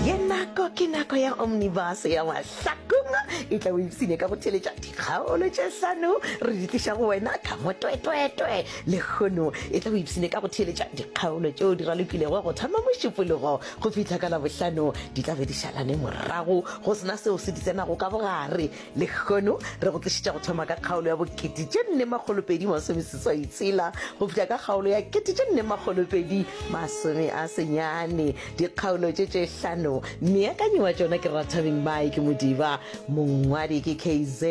Ye nako ke nako ya Omnibus ya Mahlakong. E tla o ipsine ka go theletša dikgaolo tše hlano re di tliša go wena ka motwetwetwe. Lehono e tla o ipsine ka go theletša dikgaolo tšeo di ralokilego go thoma Mošupologo go fihla ka Labohlano. Di tla be di šalane morago go se na seo se di tsenago ka bogare. Lehono re go tlišitša go thoma ka kgaolo ya bokete tše nne makgolopedi masomeseswai tshela go fihla ka kgaolo ya kete tše nne makgolopedi masome a senyane. Dikgaolo tše tše hlano meakanyi wa tšona ke Rathabeng Mike Modiba, mongwadi ke KZ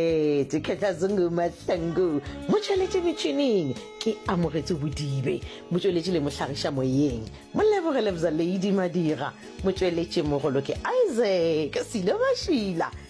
Khetlazungu Mahlangu, motšweletši metšhining ke Amogetso Bodibe, motšweletši le mohlagiša moyeng Moleboge Lebza Lady Madira, motšweletšimogolo ke Isaac Silo Mašila.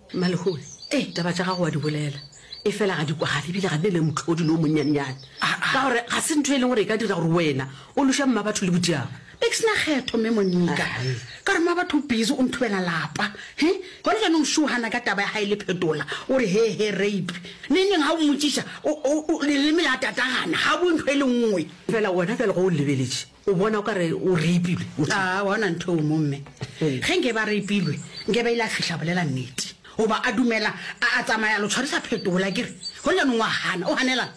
Malehoe, ee, taba tša gago wa di bolela, efela ga di kwagale ebile ga di ne le mohlodi le o monnyanenyane. Ka gore ga se ntho e leng gore e ka dira gore wena o loša Mmabatho le Bodiaba. Be ke se na kgetho, Mme Monika, ka gore Mmabatho o busy o nthubela lapa. He, gona jaanong o šohana ka taba ya gae le Phetola, o re he he rape. Nengneng ga o mmotšiša, o, o, o, leleme la tatagana, ga o bue ntho e le nngwe. Efela wena bjale ge o lebeletše, O bona o ka re o reipilwe. O tee. Aa, wa bona ntho eo mo, mme? Ee. Ge nke ba reipilwe, nke ba ile a fihla a bolela nnete. Goba a dumela, a, a tsamaya a lo tshwarisa phetola, a kere? Go le yanong o a gana. O ganelang?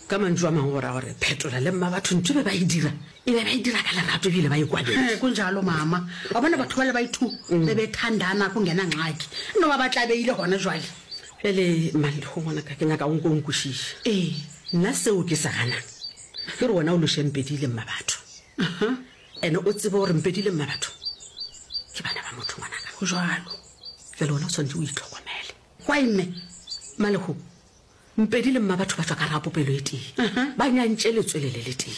Ka mantšu a mangwe go raya gore phetola le mmabatho ntho e be ba e dira, e be ba e dira ka lerato e bile ba e kwaletše. Ee, go njalo, mama. Wa bona batho bale ba i-two be be thandana go ngena ngxaki. E no ba ba tlabeile gona jwale. Bjale, Mallego ngwanaka, ke nyaka o nke o nkwešiše. Ee. Nna seo ke se ganang, Ke re wena o loše Mpedi le Mmabatho. Ene o tsebe gore Mpedi le Mmabatho ke bana ba motho ngwanaka. Go jwalo. Jwale wena o swanetše o itlhokomele. Why mme? Malehu, Mpedi le Mmabatho ba tšwa ka gare ga popelo e tee. Ba nyantše letswele le le tee.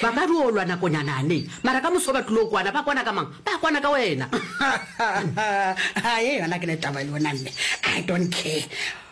Ba ka dio lwa nakonyana ne, mara ka moso ba tlilo kwana. Ba kwana ka mang? Ba kwana ka wena. Ye yona ke ne taba le yona mme. I don't care.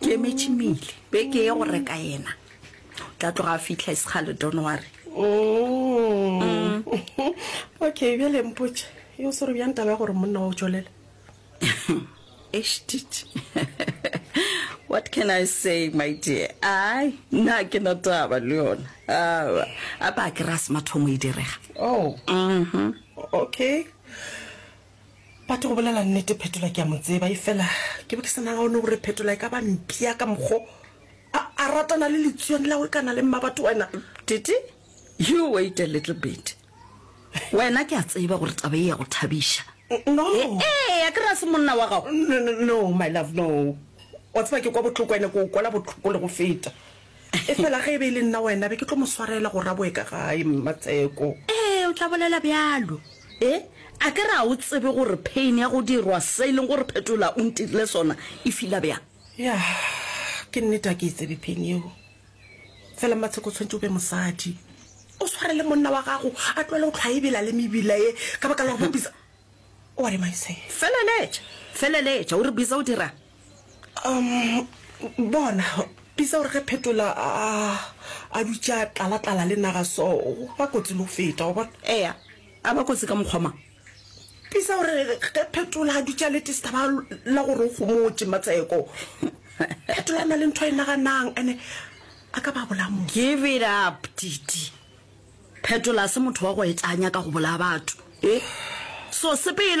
ke emetše mele beke ye go reka yena tla tloga a fitlha e sekgale don ware mm. okay bjale mpotše yo sere bjang taba ya gore monna wa o tšwelela estit what can i say my dear ai nna ke na taba le yona aa a ba kry-a semathomo e direga oh. mm -hmm. okay But go bolela nnete Phetola ke a mo tseba efela ke be ke sa nagone gore Phetola e ka ba mpia ka mokgo a, a ratana le letsuane la we kana le mmabatho wena. Titi, you wait a little bit. Wena ke a tseba gore taba e ya go thabiša. No. Ee, a ke re a se monna wa gago. No, no, no, my love, no. Wa tseba ke kwa botloko ene ke o kwela botlhoko le go feta. Efela ge e be e le nna wena, be ke tlo mo swarela gore a boe ka gae, Mmatseko. Ee, o tla bolela bjalo. E, a ke re a o tsebe gore pain ya go dirwa se e leng gore Phetola o ntirile sona e fila bjang? Ya, ke nnete a ke e tsebe pain yeo. Fela Mmatseko o tshwanetse o be mosadi. O swarele monna wa gago a tloele go hlwa a e bela le mebila ye ka baka la go bapisa. What am I saying? Feleletša, feleletša, o re Bisa o dira'ng? Um, bona, Bisa o re ge Phetola a, a dutša tlala-tlala le naga so, ba kotsi le go feta, wa bona. Eya, a ba kotsi ka mokgwa mang? Bisa o re ge Phetola a dutša le tistaba la gore o gomotše Matseko, Phetola a na le ntho a e naganang, ene a ka ba bolaya motho. Give it up, Titi. Phetola se motho wa go etanya ka go bolaya batho. E so sepele.